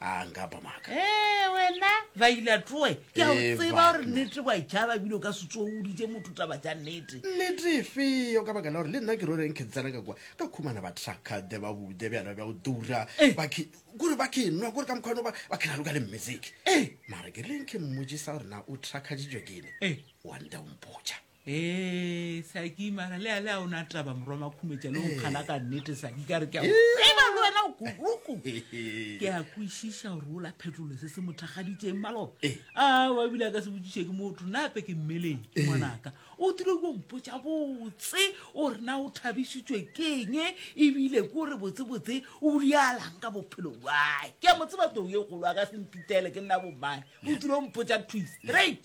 a nka ba maaka ee wena ba ila tsoe ke a o Ee, tseba gore banna. nnete wa e tšhaba ebile o ka se tsoe o ditse motho taba tša nnete nnete efeo ka baka la gore le nna ke ro reng ke tsena ka kwa ka khumana ba trakade ba bude bjana bja go dura Eh. ba ke- kore ba ke nwa kore ka mokgwa ono ba ba ke raloka le mmetseke Eh. mara ke reng ke mmojisa gore na o trakaditšwe ke ene Eh. wa nta o mpotša Hee saki mara le ale a o na taba morwa makhumetša le o nkgana ka nnete saki ka re ke a o tseba le wena o kuruku ke a kwešiša gore o la phetolo se se mothakgaditseng maloba a wa ebile a ka se botšiše ke motho nna ape ke mmeleng ke ngwanaka o tile ko mpotša botse o re na o thabišitšwe keng ebile ko re botsebotse o dialang ka bophelo bae ke a mo tseba too ye kgolo a ka se mpitele ke nna bomane o tile o mpotša twist straight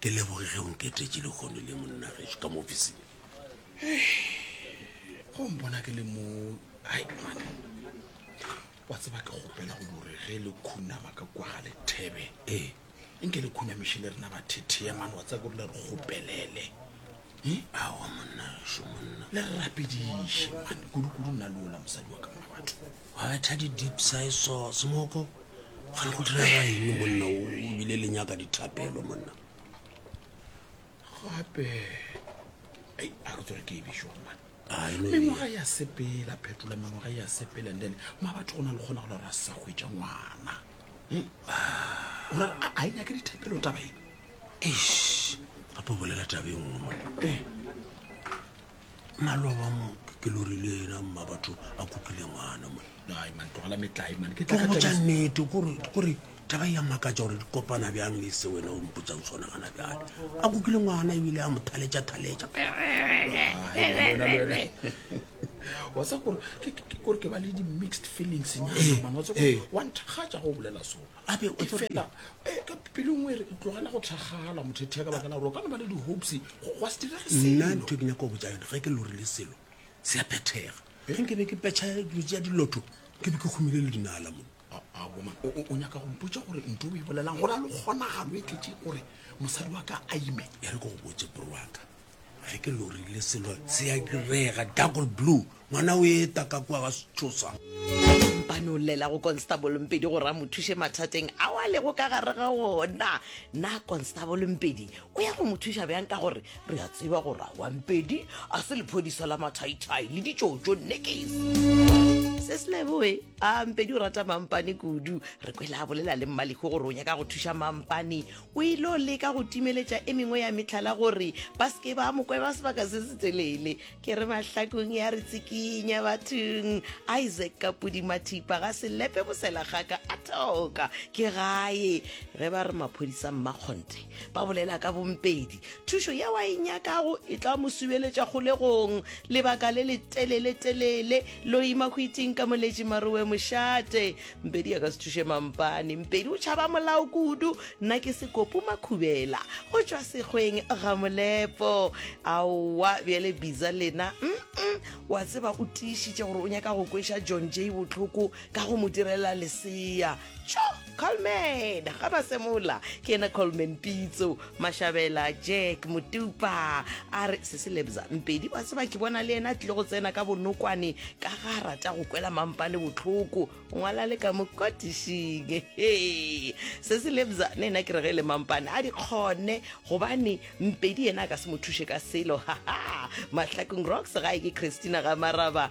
Ke leboge ge o nketetše lehono le monna gešo ka mo ofising. Go mpona ke le mo ai mane. Wa tseba ke gopela go dore ge le khunama ka kwa ga lethebe. Ee. Nke le khunamiše le rena ba thethea mane wa tseba ke le re gopelele. Hmm? Awa monna gešo monna. Le rapediše mane kudu-kudu nna le ola mosadi wa ka mma batho. Wa betha di deep side sauce moko gare go direga eng monna o bile le nyaka dithapelo monna gape ei a re tsore ke e bišo gomane Ah, e no e- mengwaga ya sepela phetola mengwaga ya sepela and then ma batho go na le kgona go lora sa hwetša ngwana Hmm? O ra- a- a e nyake dithapelo taba e Eish, gape o bolela tabeng o monna ee maloba mo ke lori le ena mma batho a kutlwile ngwana moeobotsa nnete kore taba ya makatsa gore di kopana bjang le se wena o mpotsang sone gana bjale a kutlwile ngwana ebile a mo thaletša thaletša wa sa gore ke ba le di-mixed feelings nyana ee, ee. wa nthakgatša go bolela sone gape o tsore fela eh, ka pelong o e re tlogela go thakgala mothethea ka baka la gore o ka no ba le di-hopes go gwa se direge nna selo ntho e ke nyaka go botsa yone ge ke lorile selo se ya phethega ge nke be ke petšha dilo tša dilotho ke be ke humile le dinala mo A- a, woman, o- o o nyaka go mpotsa gore nto o e bolelang gore a le kgonagalo e tletse gore mosadi wa ka a ime e re ke go botse bro waka Ge ke lorile selo se ya direga. Darkle blue, ngwana o eta ka kua ga Setshosa. Mpane o llela go Constable Mpedi gore a mo thuše mathateng ao a lego ka gare ga wona. Na Constable Mpedi o ya go mo thuša bjang ka gore re a tseba gore aowa Mpedi a se lephodiso la mathaithai le ditšotšo nekes. Sesleboe, A Mpedi o rata Mampane kudu. Re kwele a bolela le Mmalego gore o nyaka go thuša Mampane O ile o leka go timeletša e mengwe ya mehlala gore ba se ke ba mo kweba sebaka se se telele. Ke re mahlakong ya re tsikinya bathong. Isaac ka pudimathipa ga se lepe bosela gaka a thoka ke gae. Ge ba re maphodisa mmakgonthe ba bolela ka bompedi, thušo yeo a e nyakago e tla mo subeletša kgolegong lebaka le letelele-telele. Loima hwiting ka moletši marowe mošate. mpedi ya ka se thuše mampane mpedi o tšhaba molao kudu nna ke sekopo makhubela go tšwa sekgweng ga molepo aowa bjale biza lena mm -mm, wa tseba o tiišitše gore o nyaka go kweša john j botlhoko ka go mo direla lesea tšo colman ga ba semola ke ena colman pitso Mashabela Jack Motupa a re se se lebza mpedi wa tseba ke bona le yena a tlile go tsena ka bonokwane ka ga a rata go kwela mampa le botlhoko ngwala le ka mokotišing he se se lebza le yena ke re ge e le mampane a di kgone gobane mpedi yena a ka se mo thuše ka selo haha mahlakong rocks gae ke christina ga maraba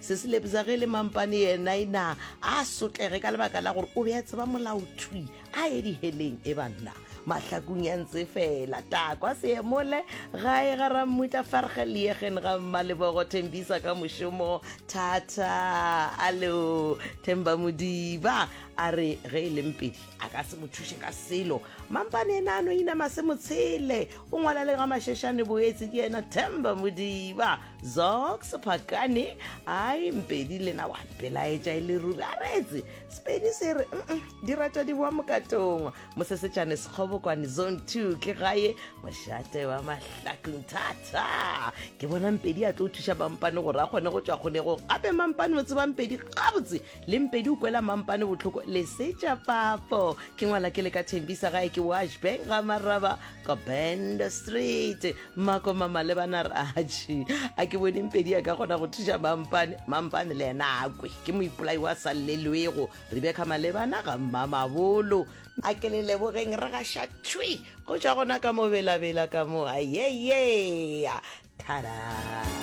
Se se lebza ge le mampane yena e na a sotlege ka lebaka la gore o be a tseba molao thwi a ye diheleng e banna mahlakung ya ntse fela takwa seemole gae ga rammutla farge liegen ga mmalebogo thembisa ka mošomo thata alo themba modiba a re ge e leng pedi a ka se mo thuše ka selo mampane ena a no inama se motshele o ngwala le ga mašešane boetse ke yena themba modiba Zox Phakane ai mpedi lena wa mpelaetša e le ruri a retse sepedi se re di rata di boa mokatongwa mosesetšane sekgobokwane zone two ke gae mošate wa mahlakong thata ke bona mpedi a tlo thuša mampane gore a kgone go tšwa kgonego gape mampane o tseba mpedi gabotse le mpedi o kwela mampane botlhoko lesetša papo ke ngwala ke le ka thembisa gae ke washbank ga maraba ka band street Mmako Mmamalebana a re, Atšhe, a ke bone Mpedi a ka kgona go thuša Mampane. Mampane le yena a kwe ke moipolai wa sa llelwego. Rebecca Malebana ga Mmamabolo. A ke le lebogeng re gaša thwi go tšwa gona ka mo belabela ka mo, ayeyea, thadaa.